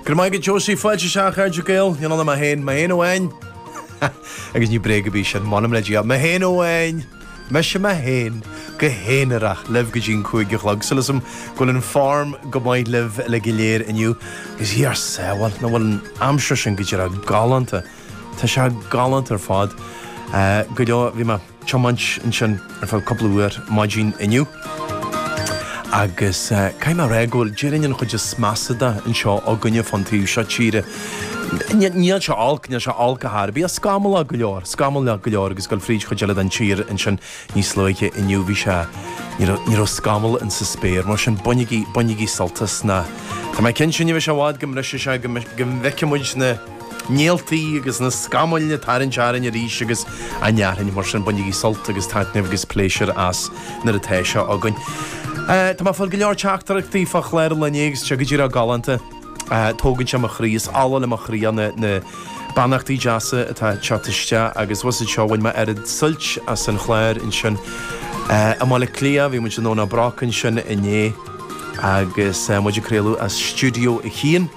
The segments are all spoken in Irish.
Go raibh maith agat Josie, fáilte isteach a chairde Gael, níl ann ach mé féin, mé féin amháin. Agus ní bréag ar bith sin, m'anam le Dia, mé féin amháin, mise mé féin, go haonarach, libh go dtí an cúig a chlog, súil agam go bhfuil an foirm go maith libh uilig go léir inniu, agus Dia ár sábháil, nach bhfuil an aimsir sin go díreach galánta, tá sé galánta ar fad, go deo, bhí mé. tiomáint ansin ar feadh cúpla uair maidin inniu agus caithfidh mé a rá go bhfuil, déarfainn, an chuid is measa de anseo againne fán taobh seo tíre. Níl sé olc, níl sé olc ar chor ar bith, scamallach go leor, scamallach go leor agus dul fríd chuid eile den tír ansin níos luaithe inniu bhí sé, ní raibh scamall in sa spéir mar sin bainigí, bainigí sult as nó, tá mé cinnte ní bheidh sé i bhfad go mbrisfidh sé, go bhfeicfidh muid na. néaltaí agus na scamaill ag tarraingt orainn arís agus déarfainn, mar sin, bainigí sult agus taitneamh agus pléisiúr as nuair atá sé againn. Tá mé ag fáil go leor teachtaireachtaí fá chlár an lae inné agus tá sé go díreach galánta, tógann sé mo chroí, is ola le mo chroí iad na beannachtaí deasa atá ag teacht isteach agus bhus anseo bhain mé oiread suilt as an chlár ansin i mBaile Átha Cliath, bhí muid i nDomhnach Broc ansin inné agus muid ag craoladh as stiúideo a haon.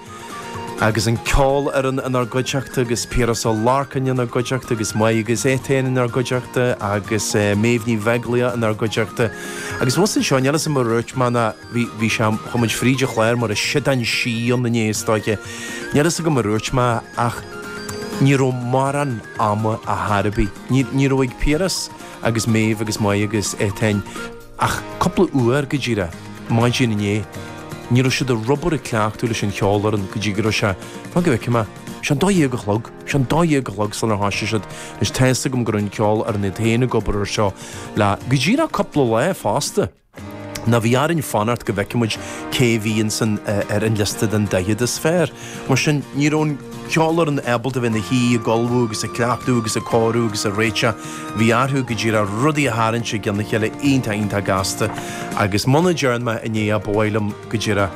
Agus an cheolfhoireann inár gcuideachta agus Piaras Ó Lorcáin inár gcuideachta agus Máire agus Étáin inár gcuideachta agus Méabh Ní Bheaglaoich inár gcuideachta agus fós anseo níl fhios agam ar dhúirt mé ná bhí bhí sé chuaigh muid fríd an chlár mar shéideán sí ann inné is dóiche níl fhios agam ar dhúirt mé ach ní raibh mórán ama ar chor ar bith ní ní raibh ag Piaras agus Méabh agus Máire agus Étáin Ach cúpla uair, go díreach maidin inné, ní raibh siad ag obair ag cleachtadh leis an cheolfhoireann go dtí go raibh sé, fan go bhfeicfidh mé, sea an dó dhéag a chlog, sea an dó dhéag a chlog sular thoisigh siad. Anois tá fhios agam go raibh an cheolfhoireann iad féin ag obair ar seo le go díreach cúpla lá fosta. Now bhí orainn fanacht go bhfeicfeadh muid cé a bhí ins an, ar an liosta den daichead is fearr. Mar sin, ní raibh an cheolfhoireann ábalta a bheith ina shuí ag ullmhú agus ag cleachtadh agus ag cóiriú agus ag réiteach. Bhí orthu, go díreach, rudaí a tharraingt i gceann a chéile iontach iontach gasta agus muna dtearn mé inné é, ba mhaith liom, go díreach,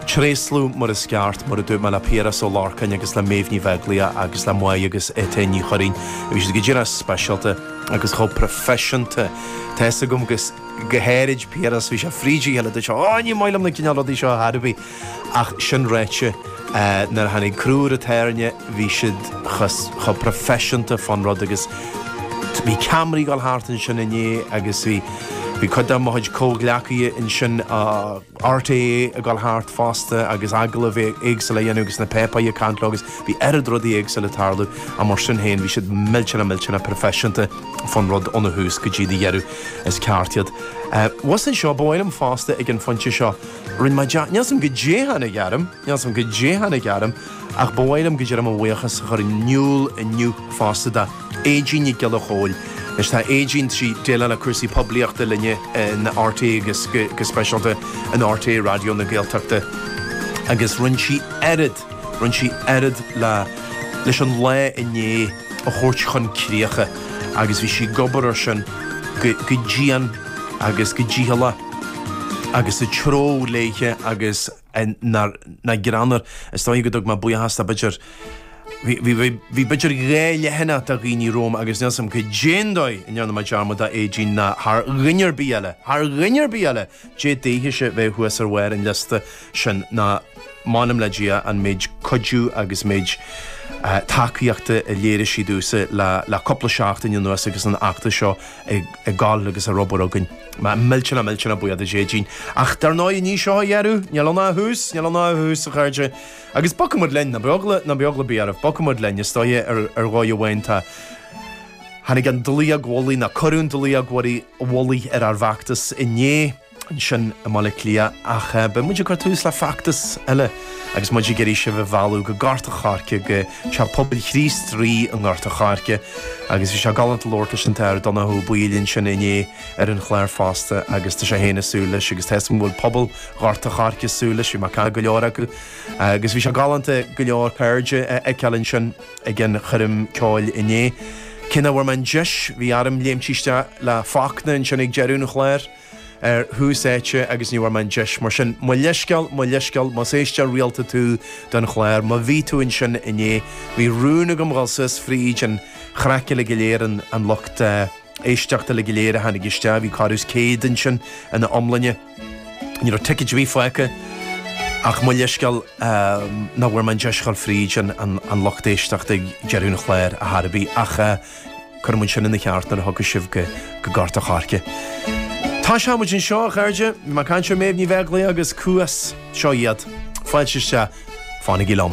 tréaslú mar is ceart, mar a dúirt mé, le Piaras Ó Lorcáin agus le Méabh Ní Bheaglaoich agus le Máire agus Étáin Ní Churraoin. Bhí siad go díreach speisialta agus chomh proifisiúnta. Tá fhios agam, go háirid Piaras, bhí sé fríd a chéile, dúirt sé, Ó, ní maith liom na cineál rudaí seo ar chor ar bith. Ach sin ráite, nuair a tháinig crú ar an tairne bhí siad chomh proifisiúnta fán rud agus bhí ceamaraí ag dul thart ansin inné agus bhí cuid de mo chuid comhghleacaithe ansin i RTÉ ag dul thart fosta agus agallaimh éagsúla a dhéanamh agus na páipéirí ag caint leo agus bhí oiread rudaí éagsúla ag tarlú ach mar sin féin bhí siad millteanach millteanach proifisiúnta fán rud óna thús go dtí a dheireadh. Is ceart iad. Uaidh sin seo ba mhaith liom fosta ag an phointe seo, Rinne mé jab, níl 's agam cad é a tháinig orm, níl 's agam cad é a tháinig orm ach ba mhaith liom go deimhin mo bhuíochas a chur in iúl inniu fosta do Aedín Nic Giolla Chomhaill. Anois tá Aedín, tá sí ag déileáil le cúrsaí poiblíochta linne in RTÉ agus go speisialta in RTÉ Raidió na Gaeltachta agus rinne sí oiread, rinne sí oiread le, leis an lá inné. a thabhairt chun críche agus bhí sí ag obair ar sin go dian agus go dícheallach agus sa treo léithe agus nach greannmhar. Is dóigh go dtug mé buíochas do b'fhéidir bhí b'fhéidir dhá leathanach de dhaoine romham agus níl 's agam cad é an dóigh a ndearna mé dearmad d'Aedín ná thar dhuine ar bith eile, thar dhuine ar bith eile! Dé daoithese bheith thuas ar bharr an liosta sin ná m'anam le Dia an méid cuidiú agus méid tacaíochta a léirigh sí domhsa le cúpla seachtain anuas agus an fheachtas seo ag dul agus ag obair againn. Millteanach millteanach buíoch d'Aedín. Ach dar ndóigh ní hé seo a dheireadh níl ann ach a thús, níl ann ach a thús a chairde. Agus bogfaimid linn, ná bíodh eagla ar bith oraibh, bogfaimid linn is dóigh ar dhóigh amháin tá. Tháinig an dlaíóg mhullaigh, nó cuireadh an dlaíóg mhullaigh ar ár bhfeachtas inné ansin i mBaile Átha Cliath ach beidh muid ag cur tús le feachtas eile agus muid ag iarraidh sibh a mhealladh go Gort an Choirce, go Teach Pobail Chríost Rí i nGort an Choirce. Agus bhí sé galánta labhairt leis an tAthair Donncha Ó Baoill ansin inné ar an chlár fosta agus tá sé féin ag súil leis agus tá 's agam go bhfuil pobal Ghort an Choirce ag súil leis, bhí mé ag caint le go leor acu. Agus bhí sé galánta go leor cairde a fheiceáil ansin. ag an choirm ceoil inné. Cé nach bhfuair mé an deis, bhí orm léimtí isteach le Fachtna ansin ag deireadh an chláir, ar Thús Áite agus ní bhfuair mé an deis. Mar sin, mo leithsceal, mo leithsceal, más éisteoir rialta tú don chlár, má bhí tú ansin inné, bhí rún agam dhul suas fríd an chraic uilig go léir, an lucht éisteachta uilig go léir a tháinig isteach, bhí corradh is céad ansin ina iomláine. Ní raibh ticéad ar bith fágtha ach mo leithscéal nach bhfuair mé an deis a dhul fríd an lucht éisteachta ag deireadh an chláir ar chor ar bith ach cuirfidh mé sin ina cheart nuair a thiocfas sibh go Gort an Choirce. Tosóidh muid anseo, a chairde. Bhí mé ag caint ar Méabh Ní Bheaglaoich agus Cuas. Seo iad. Fáilte isteach. Fanaigí liom.